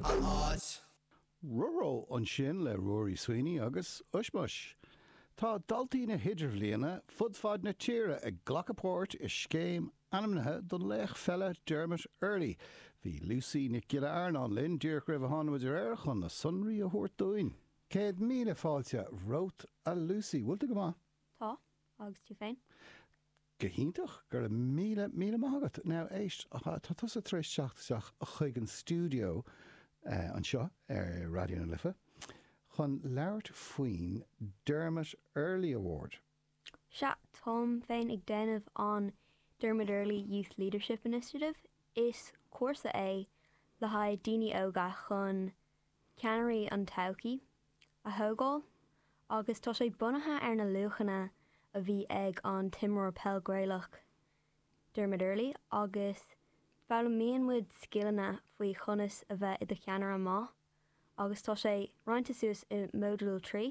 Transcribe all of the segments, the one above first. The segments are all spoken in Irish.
an áit. Ró Ró ansin le Ruairí Sweeney agus OisMois. Tá daltaí na hIdirbhliana fud fad na tíre ag glacadh páirt i scéim ainmnithe don laoch pheile Dermot Earley. Bhí Lusaí Nic Giolla Earnáin linn díreach roimh a tháinig muid ar aer chun na sonraí a thabhairt dúinn. Céad míle fáilte romhat a Lusaí, bhfuil tú go maith? Tá, agus tú féin? Go hiontach! Go raibh míle, míle maith agat. Now, éist, tá tusa tar éis teacht isteach chuig an stiúideo anseo ar Raidió na Life chun labhairt faoin Dermot Earley Award. Sea, táim féin ag déanamh an Dermot Earley Youth Leadership Initiative. Is cúrsa é le haghaidh daoine óga chun ceannairí an todhchaí a thógáil agus tá sé bunaithe ar na luachanna a bhí ag an t-imreoir peil Gaelach Dermot Earley agus foghlaimíonn muid scileanna faoi chonas a bheith i do cheannaire maith agus tá sé roinnte suas i modúil 3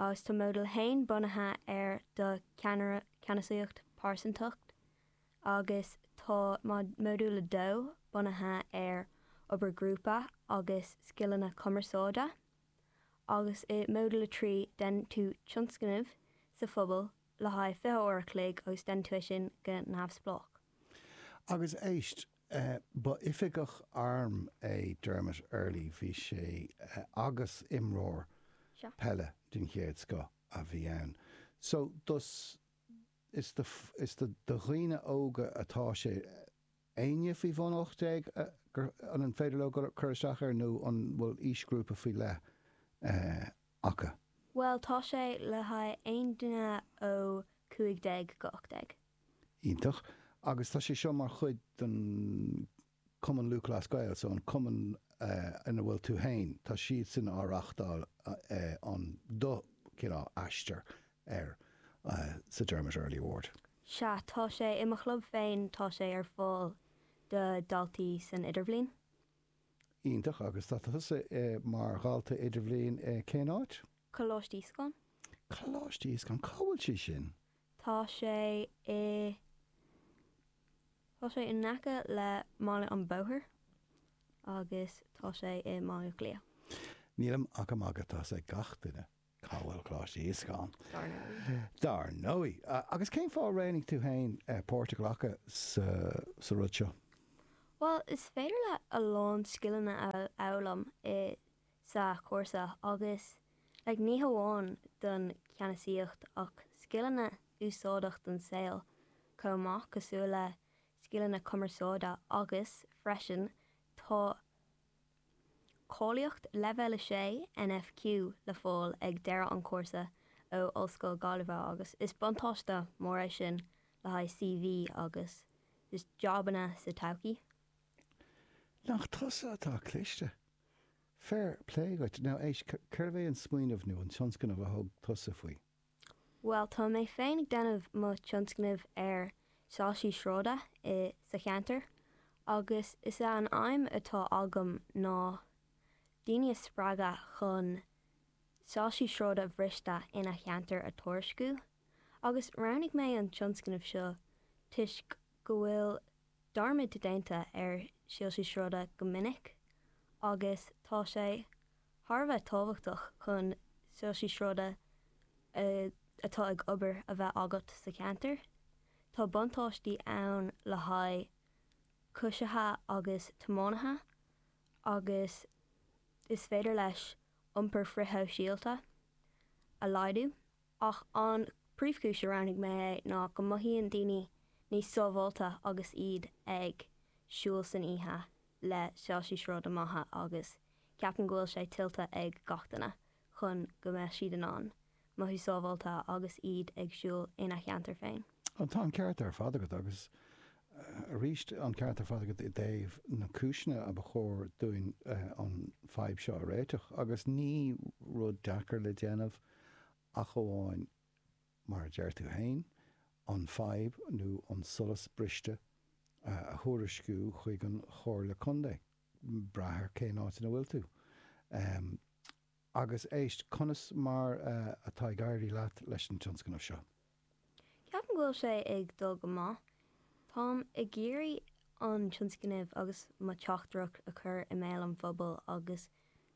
agus tá Modúl 1 bunaithe ar do ceannair ceannasaíocht pearsantacht agus tá modúl 2 bunaithe ar obair ghrúpa agus scileanna cumarsáide, agus i Modúl 3 déanann tú tionscnamh sa phobal le haghaidh 20 uair an chloig agus déanann tú é sin go neamhspleách. Agus éist, ba oifigeach airm é Dermot Earley, bhí sé agus imreoir peile den chéad scoth a bhí ann. So, tá sé. Is do dhaoine óga atá sé. Éinne faoi bhun 18, an féidir leo cur isteach air nó an bhfuil aoisghrúpa faoi leith acu? Bhuel tá sé le haghaidh aon duine ó 15 go 18. Iontach. Agus tá sé seo mar chuid den. Cumann Lúthchleas Gael, so an cumann ina bhfuil tú féin, tá siadsan á reáchtáil an do chineál aistir ar sa Dermot Earley Award. Sea, tá sé i mo chlub féin, tá sé ar fáil do dhaltaí san idirbhliain. Iontach, agus tá tusa mar dhalta idirbhliain i cén áit? Coláiste Íosagáin. Coláiste Íosagáin, cá bhfuil sé sin? Tá sé i Tá sé in aice le Baile an Bhóthair agus tá sé i mBaile Átha Cliath. Nílim ach ag magadh tá a fhios ag gach duine cá bhfuil Coláiste Íosagáin, dár ndóigh. Agus cén fáth ar roghnaigh tú féin páirt a ghlacadh sa rud seo? Bhuel, is féidir leat a lán scileanna a fhoghlaim i. sa chúrsa agus, like, ní hamháin don cheannasaíocht ach scileanna úsáideach don saol chomh maith cosúil le scileanna cumarsáide agus freisin tá cáilíocht leibhéal 6 NFQ le fáil ag deireadh an chúrsa ó Ollscoil Gaillimhe agus is buntáiste mór é sin le haghaidh CV agus just jabanna sa todhchaí. Nach tusa atá cliste! Fair play dhuit. Now, éist, cérbh é an smaoineamh nó an tionscnamh a thug tusa faoi? Bhuel, tá mé féin ag déanamh mo tionscnamh ar soilsí sráide i sa cheantar agus is é an aidhm atá agam ná daoine a spreagadh chun soilsí sráide bhriste ina cheantar a tuairisciú agus roghnaigh mé an tionscnamh seo toisc go bhfuil dearmad déanta ar soilsí sráide go minic agus tá sé thar a bheith tábhachtach chun soilsí sráide atá ag obair a bheith agat sa cheantar. Tá buntáistí ann le haghaidh coisithe agus tiománaithe agus is féidir leis iompar frithshóisialta a laghdú. Ach an príomhchúis a roghnaigh mé é ná go mothaíonn daoine níos sábháilte agus iad ag siúl san oíche le soilsí sráide maithe agus ceapaim go bhfuil sé tuillte ag gach duine chun go mbeadh siad in ann mothú sábháilte agus iad ag siúl ina cheantar féin. Tá an ceart ar fad agat agus arís an ceart ar fad agat i dtaobh na cúiseanna a ba chóir dúinn an fadhb seo a réiteach agus ní rud deacair le déanamh. ach amháin, mar a deir tú féin, an fhadhb nó an solas briste a thuairisciú chuig an Chomhairle Contae, brath ar cén áit ina bhfuil tú. Agus éist, conas mar atá ag éirí leat leis an tionscnamh seo? Ceapaim go bhfuil sé ag dul go maith. Táim ag iarraidh an tionscnamh agus mo teachtaireacht a chur i mbéal an phobail agus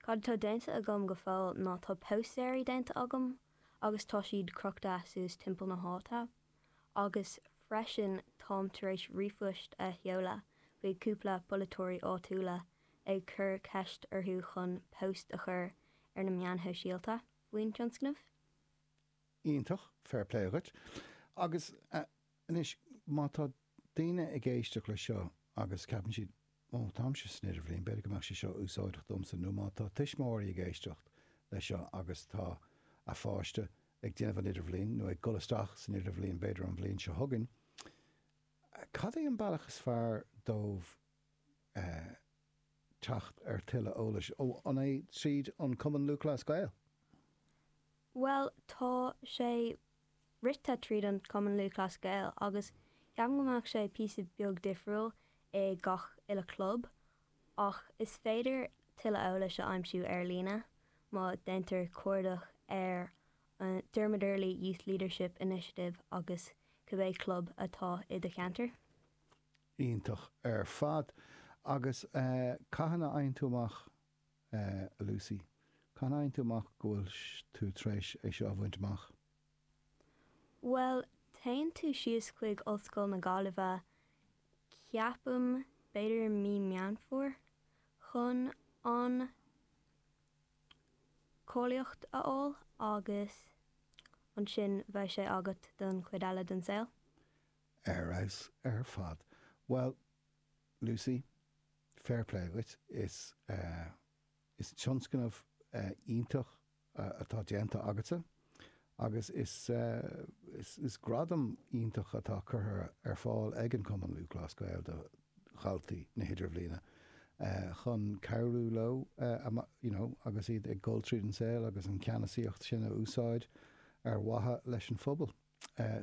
cad atá déanta agam go fóill ná tá póstaeirí déanta agam agus tá siad crochta suas timpeall na háite agus freisin táim tar éis ríomhphoist a sheoladh chuig cúpla polaiteoirí áitiúla ag cur ceist orthu chun post a chur ar na meáin shóisialta faoin tionscnamh. Iontach, fair play dhuit. Agus anois, má tá daoine ag éisteacht leis seo agus ceapann siad, Ó, táimse san idirbhliain, b'fhéidir go mbeadh sé seo úsáideach domsa, nó má tá tuismitheoirí ag éisteacht leis seo agus tá a pháiste ag déanamh an idirbhliain, nó ag dul isteach san idirbhliain b'fhéidir an bhliain seo chugainn, cad é an bealach is fearr dóibh teacht ar tuilleadh eolais ó an é tríd an Cumann Lúthchleas Gael? Bhuel, tá sé rite tríd an Cumann Lúthchleas Gael agus ceapaim go mbeadh sé píosa beag difriúil i gach uile club, ach is féidir tuilleadh eolais a aimsiú ar líne má déantar cuardach ar an Dermot Earley Youth Leadership Initiative agus cibé club atá i do cheantar. Iontach ar fad. Agus cathain a fhaigheann tú amach, a Lucy, cathain a fhaigheann tú amach go bhfuil tú tar éis é seo a bhaint amach? Bhuel, téann tú síos chuig Ollscoil na Gaillimhe, ceapaim, b'fhéidir mí Meán Fómhair, chun an cáilíocht a fháil agus ansin bheadh sé agat don chuid eile den saol. Ar fheabhas ar fad. Bhuel, Lucy, fair play agat, is is tionscnamh iontach atá déanta agatsa agus is is gradam iontach atá curtha ar fáil ag an gCumann Lúthchleas Gael do dhaltaí na hidirbhliana chun cabhrú leo you know agus iad ag dul tríd an saol agus an ceannasaíocht sin a úsáid ar mhaithe leis an phobal.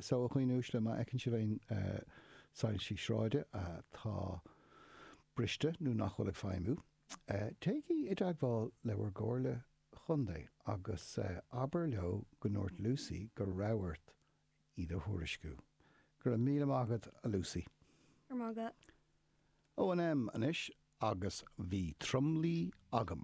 Só, a dhaoine uaisle, má fheiceann sibh aon soilsí sráide atá briste nó nach bhfuil ag feidhmiú, téigí i dteagmháil le bhur gComhairle Chontae agus abair leo go ndúirt Lucy go raibh ort iad a thuairisciú. Go raibh míle maith agat, a Lucy. O&M anois agus bhí tromluí agam.